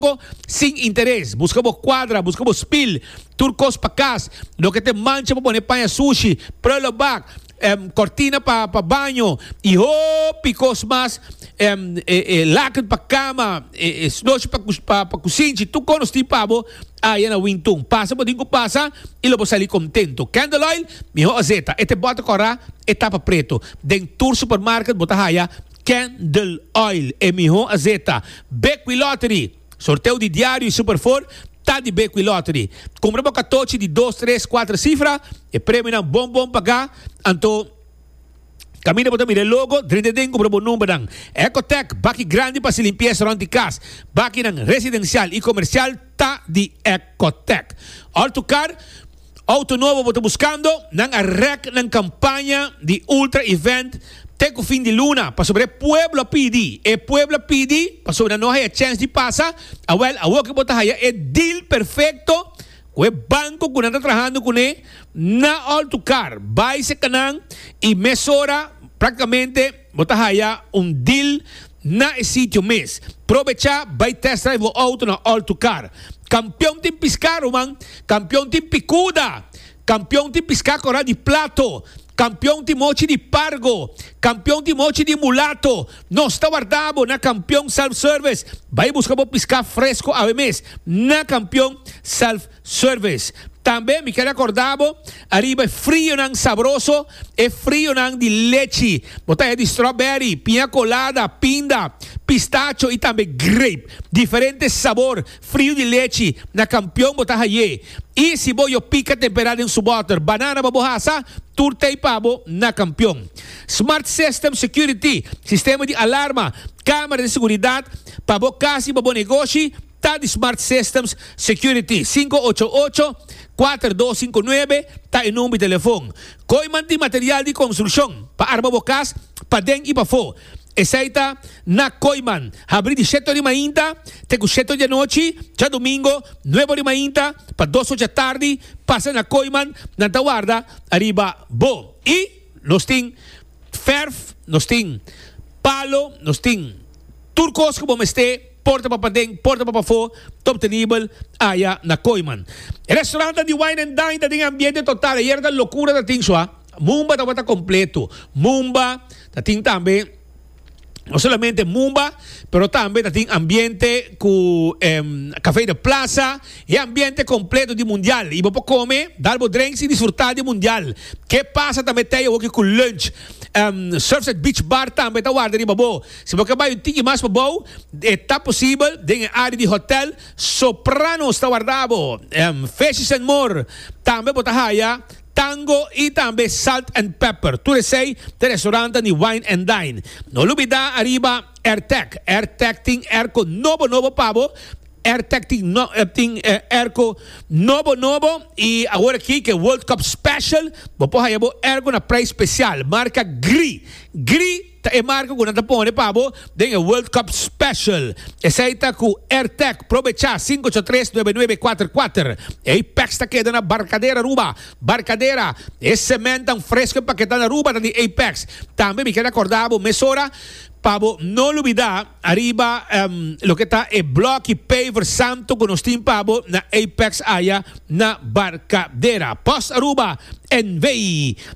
Tampoco sin interes. Busca bo cuadra, busca bo spil, tur cos pa cas, loke ta e mancha pa pone paña sushi, prullenbak, cortina pa baño y hopi cos mas, e laken pa cama, e snoshi pa cusinchi, tur cos nos tin pa bo aya na Wingtun. Pasa bo tin cu pasa y lo bo sali contento. Candle Oil, miho azeta, e te bota cora, e tapa preto. Den tur supermarket bo ta haya Candle Oil e miho a zeta. Bekwí Lottery, Sorteo di diario y Super Four ta di Bekwí Lottery. Cumpra bo catochi di dos, tres, cuatro cifra, e premionan bon bon pagá, anto caminda bo ta mira e logo, drenta den cumpra bo numbernan. Ecotech, Baki grandi pa haci limpieza rond di cas, bakinan residencial y comercial ta di Ecotech. Ortucar. Auto nobo bo ta buskando? Nan a rèk nan kampaña di Ultra Event te ku fin di luna pasobra e pueblo a pidi. E pueblo a pidi pasobra nan no haya chèns di pasa. Awèl, awor ke bo ta haya e deal perfekto ku e banko ku nan ta trahando kuné na Altukar, bai serka nan i mesora praktikamente. Bo ta haya un deal na e sitio mes. Probecha bay test drive bo auto na All to Car. Campeon tin pisca ruman, campeon tin picuda, campeon tin pisca coral di plato, campeon tin mochi di pargo, campeon tin mochi di mulato. Nos ta warda bo na Campeon Self Service. Bay busca bo pisca fresco awe mes na Campeon Self. Service. Tambe mi ke rekorda bo ariba e frionan sabroso, e frionan di lechi. Bo ta haya di strawberry, piña colada, pinda, pistacho y tambe grape. Diferente sabor frio di lechi na Kampion bo ta hay'é. Y si bo yo pika tempera den su bòter banana pa bo hasa, tur t'ey pa bo na Kampion. Smart System Security, sistema di alarma, kamera di seguridad pa bo kas y pa bo negoshi, ta di Smart Systems Security. Sinku ocho ocho, kuater dos sinku nuebe ta e number di telefon. Koiman tin material di konstrukshon pa arma bo kas paden i pafó. Esei ta na Koiman, habri di shete or di mainta te ku shete or di anochi, djadumingu, nuebe or di mainta pa dos or djatardi. Pasa na Koiman, nan ta warda ariba bo. I. Nos tin ferf, nos tin palo, nos tin tur cos cu bo mester, porta pa paden, porta pa pafo, ta obtenibel aya na Kooiman. E restaurantan di Wine and Dine ta den e ambiente total, ayer ta locura ta tin su a. Mumba tabata completo, Mumba ta tin tambe. No solamente mumba, pero tambe ta tin ambiente cu em, café de plaza, e ambiente completo di mundial. Y bo por come, dar bo drinks y disfrutar di mundial. Ke pasa tambe tei hoki cu lunch. Em, Surfside Beach Bar tambe ta warda riba bo. Si bo ke bay un tiki mas pabou, e ta posibel den e area di hotel Sopranos ta warda bo. Em, Fishes and More tambe bo ta haya. Tango y tambe Salt and Pepper, tur esey ta restaurantan di Wine and Dine. No lubida ariba Airtec, Airtec tin airco nobo nobo pa bo, Airtec tin tin airco nobo nobo y awor aki ke World Cup Special bo por haya bo airco na prijs special, marca Gri, Gri. Ta e marca cu nan ta pone pa bo den e World Cup Special. Esey ta cu Airtech Pro Becha sinku ocho tres nuebe nuebe kuater kuater. Ey packs ta keda na Barcadera Aruba. Barcadera, e cementnan fresco e paketan Aruba ta di ey packs. Tambe mi ker acorda bo mesora pa bo no lubida ariba loke ta e bloki paver santo cu nos tin pa bo na ey packs aya. na Barcadera. Post Aruba NV.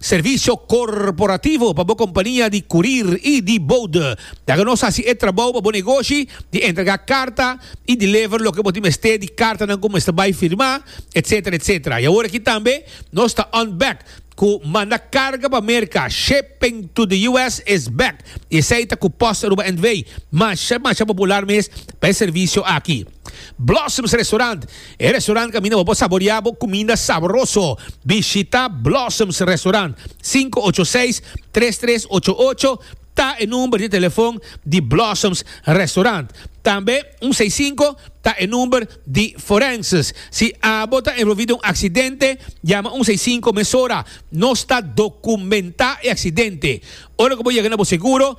Servisio corporativo pa bo compania di curir y di bode. Laga nos haci e trabou pa bo negoshi di entrega carta y deliver loke bo tin mester di cartanan cu mester bay firma, etc. Etc. Y awor aki tambe nos ta on back cu manda carga pa Merca. Shipping to the US is back y esey ta cu Post Aruba NV. Masha, masha popular mes pa e servisio aki. Blossoms Restaurant, E restaurant kaminda bo por saborea bo kuminda saboroso. Bishita Blossoms Restaurant, sinku ocho seis, tres tres ocho ocho ta e number di telefon di Blossoms Restaurant. Tambe un seis sinku ta e number di Forenses. Si abo ta envolvi den un aksidente, yama un seis sinku mesora. Nos ta dokumentá e aksidente. Ora ku bo yega na bo seguro,